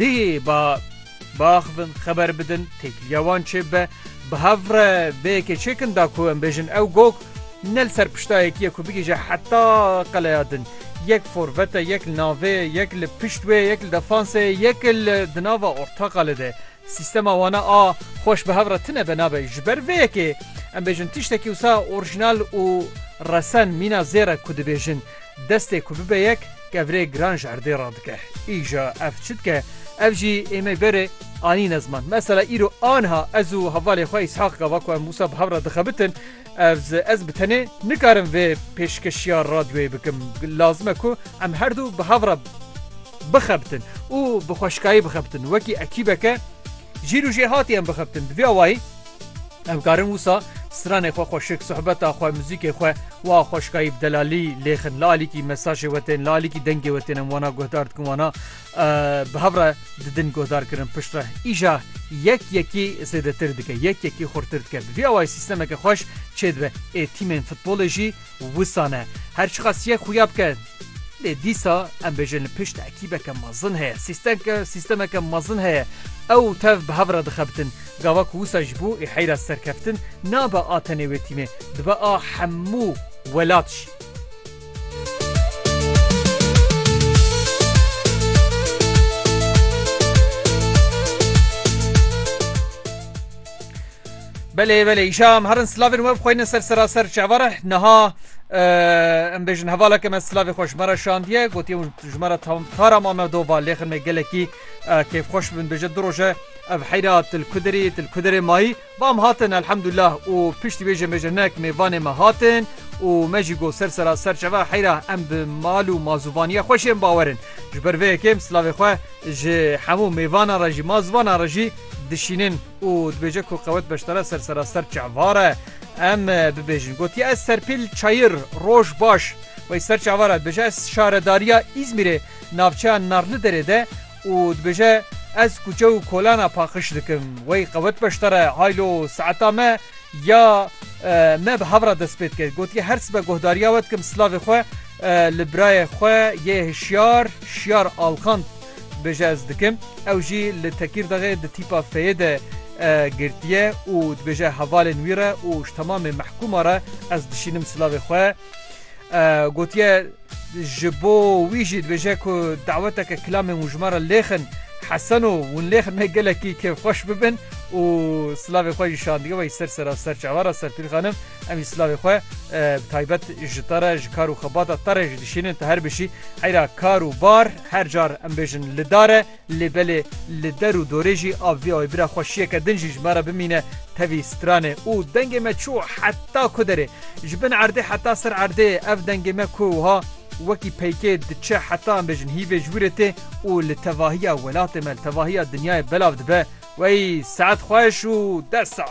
Dihê ba biaxivin xeber bidin têkiliya wan çê bibe. Bi hev re vê yekê çêkin da ku em bêjin ew Gog ne li ser pişta yekîye ku bigihîje heta qeleya din. Yek forvete, yek li navê ye, yek li pişt wê ye, yek li defanse ye, yek li di nava ortaqalê de ye. Sîstema wana a xweş bi hev re tine be nabe. Ji ber vê yekê em bêjin tiştekî wisa orjînal û resen mîna zêr e ku dibêjin. Destê ku bibe yek kevirê giran ji erdê re dike. Îja ev çi dike? Ev jî ê me berê anîne ziman. Mesela îro anha ez û hevalê xwe Îshaq gava ku em wisa bi hev re dixebitin, ez ez bi tenê nikarim vê pêşkeşiya radyoyê bikim. Lazim e ku em her du bi hev re bixebitin û bi xweşikayî bixebitin. Wekî ekîbeke. Jîr û jêhatî em bixebtin. Di vê awayî em karin wisa stranê xwe xweşik, sohbeta xwe, muzîkê xwe wiha xweşikayî bi delalî lêxin. Li alîkî mesajê we tên, li alîkî dengê we tên em wana guhdar dikin, wana bi hev re didin guhdarkirin pişt re. Îja yek yekî zêdetir dike, yek yekî xurtir dike. Bi vî awayî sîstemeke xweş çêdibe. Ê tîmên futbolê jî. Wisa ne, her çiqas yek xuya bike. Lê dîsa em bêjin li pişt ekîbeke mezin heye, sîstemke sîstemeke mezin heye. Ew û tev bi hev re dixebitin. Gava ku wisa ji bo ê heyra serkeftin nabe a tenê wê tîmê, dibe a hemû welat jî. Belê belê îşa em herin slavên we bixweyne ser seraser çavara niha em bêjin hevaleke me slavê xwe ji me re şandiye gotiye ji me re tara ma me dova lêxin me gelekî kêfxweş bin bêje du roje ev heyra tilkudirî tilkudirê mayî vam hatin elhemdullah û piştî bêje bêje nek mêvanê me hatin û me jî got ser sera ser çeva heyra em bi mal û mazûvaniye xweşên bawerin ji ber vê yekêm slavê xwe ji hemû mêvanan re jî mazvanan re jî dişînin. û dibêje ku qewet beşdara ser seraser çavare em bibêjin. Gotiye ez Serpîl Çayir roj baş wey ser çavara dibêje ez şaredariya Îzmîrê navçeya Narliderê de û dibêje ez kuçe û kolana paqij dikim. Wey qewet beşdare haylo saeta me ya me bi hev re dest pê dike. Gotiye her sibe guhdariya we dikim silavê xwe li birayê xwe yê hişyar Şiyar Alkan. Dibêje ez dikim. Ew jî li Tekîrdaxê di tîpa feyê de girtiye û dibêje hevalên wî re û ji temamê mehkûma re ez dişînim silavê xwe. Gotiye ji bo wî jî dibêje ku daweteke kilamên wijma re lêxin Hesen û hûn lêxin me gelekî kêfxweş bibin û silavê xwe jî şandî wayî ser sera ser çavan re Serpîl xanim em jî silavê xwe bi taybet ji te re ji kar û xebata te re jî dişînin tu her bişî heyra kar û bar. Her car em bêjin li dar e, lê belê li der û dorê jî av vî aybira xwe şiyeke din jî ji me re bimîne tevî stranê û dengê me çû heta ku derê. Ji bin erdê heta ser erdê ev dengê me ku wiha wekî peykê diçe heta em bêjin hîvê ji wîrê tê û li tevahiya welatê me li tevahiya dinyayê belav dibe, Wey saet xweş û dest sax!